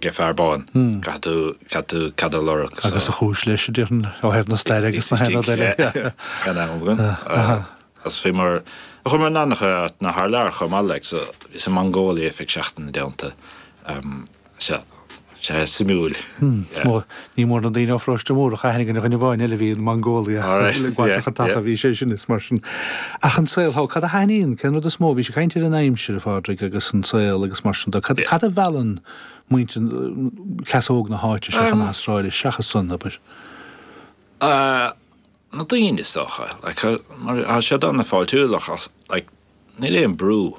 Ge fear bán. Caithfidh tú cead a lorg. Agus an chúis leis, a déarfainn, ó thaobh na staire agus na haon rud eile. Gan amhras. Gan amhras. Agus bhíomar, chuamar in an-chuid áiteanna thar lear chomh maith, like so bhíos i Mongolia, cúig seachtaine déanta. Sea, sea, suimiúil. Ní mór na daoine ó Pharóiste Mórdhach, aithne agam ar dhuine amháin eile a bhí in Mongolia a bhfuil an ghaoth ag cur taca, bhí sé sin is mar sin. Ach an saol thall, cad a thaitníonn, cén rud is mó, bhís ag caint ar an aimsir, a Phádraig, agus an saol agus mar sin dó. Cad, cad a mheallann muintir, cleas óg na háite seo chun na hAstráile seachas an obair? Na daoine, is dócha. Like, tá siad ana-fháiltiúil ach like, níl aon brú.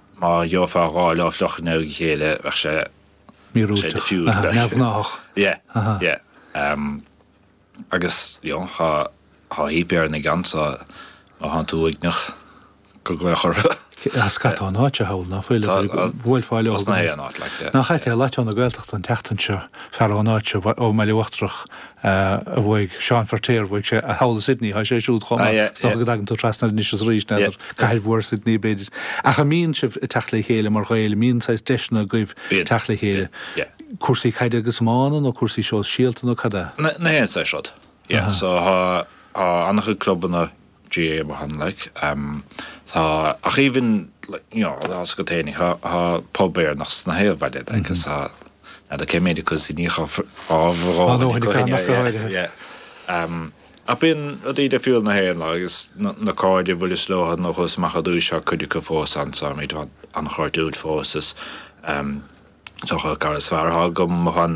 Má gheofá dhá lá fliuch i ndiaidh a chéile bheadh sé, sé Míorúilteach. diffused Aha, bheadh sé, neamhghnáthach. yeah, Aha. yeah. Em, agus, you know, thá, thá heap Éireannach ansan, má thánn tú uaigneach, go glaoch orthu. Cé, ah, scata ón áit thall, ná fuil, Tá, a ah, bhuailfeá leo. ós na haon áit, like, yeah. Nach ait é, Lotto na Gaeltachta an tseachtain seo, fear ón áit seo, bhai, ón mBaile Uachtarach, a bhuaigh Seán Feirtéar, bhuaigh sé é, thall i Sydney atá sé siúd chomh maith, is dócha go dtagann tú trasna anois is arís, n'fheadar, cathair mhór Sydney, b'fhéidir. Ach an mbíonn sibh ag teacht le chéile mar Ghaeil, an mbíonn saghas deiseanna agaibh teacht le chéile? Cúrsaí caide agus iomána nó cúrsaí sóisialta nó cad é? Na haon saghas rud, yeah. So tá an-chuid clubanna GAA amuigh ann like tá ach even like you know os go téine tá tá pub Éireannach insna haon bhaile like is tá now the came into cuz ní cha fhabhar dhó na coinne yeah yeah yeah um ach bíonn rudaí difriúil na hÉireann like is na na cairde a bhuaileas leo nuair a chuas amach ar dtúis tá cuid acu fós ann so táimid an-chairdiúil fós is um is dócha cara is fearr atá agam amuigh ann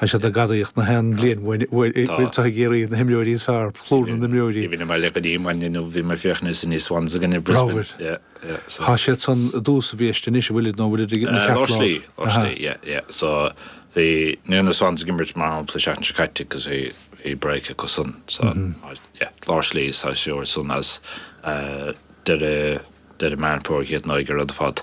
Tá siad ag gadaíocht na haon bhliain uainn uair Tá. uair atá ag iarraidh na himreoirí is fearr, plúr na n-imreoirí. Ní bhíonn mé le go dtí maidin inniu, bhí mé ag féachaint ar Sydney Swans i gcoinne Brisbane. Ramhar. Yeah, yeah, so. Tá siad san i dtús an bhiaiste anois, an bhfuilid nó an bhfuilid ag an cheathrú Lár slí, lámh? lár slí, yeah, yeah. So bhí ní raibh na Swans ag imirt mar shampla seachtain seo caite agus bhí bhí break acu san. So yeah, lár slí sa séasúr ansan is uh, deireadh deireadh Meán Fómhair críochnóidh an rud ar fad.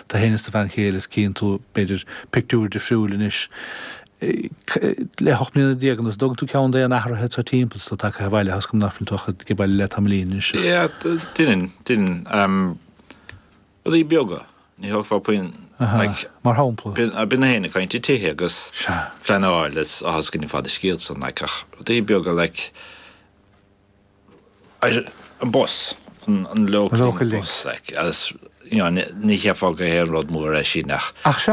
tú féin is do bhean chéile is cíonn tú, b'fhéidir, pictiúr difriúil anois, le hocht mbliana déag anuas, dtugann tú ceann d'aon athruithe atá timpeall atá tagtha abhaile toisc go bhfuileann tú ag baile le tamaillín anois? Yeah, deinim, deinim. Rudaí beaga, ní thógfá puinn, like, Mar shampla? bíonn na héinne ag caint ar thithe agus Sea. pleanáil is tá a fhios againn ar fad an scéal san, like, ach rudaí beaga, like, ar an bus, an Local Link bus, agus ní cheapfá go haon rud mór é sin ach.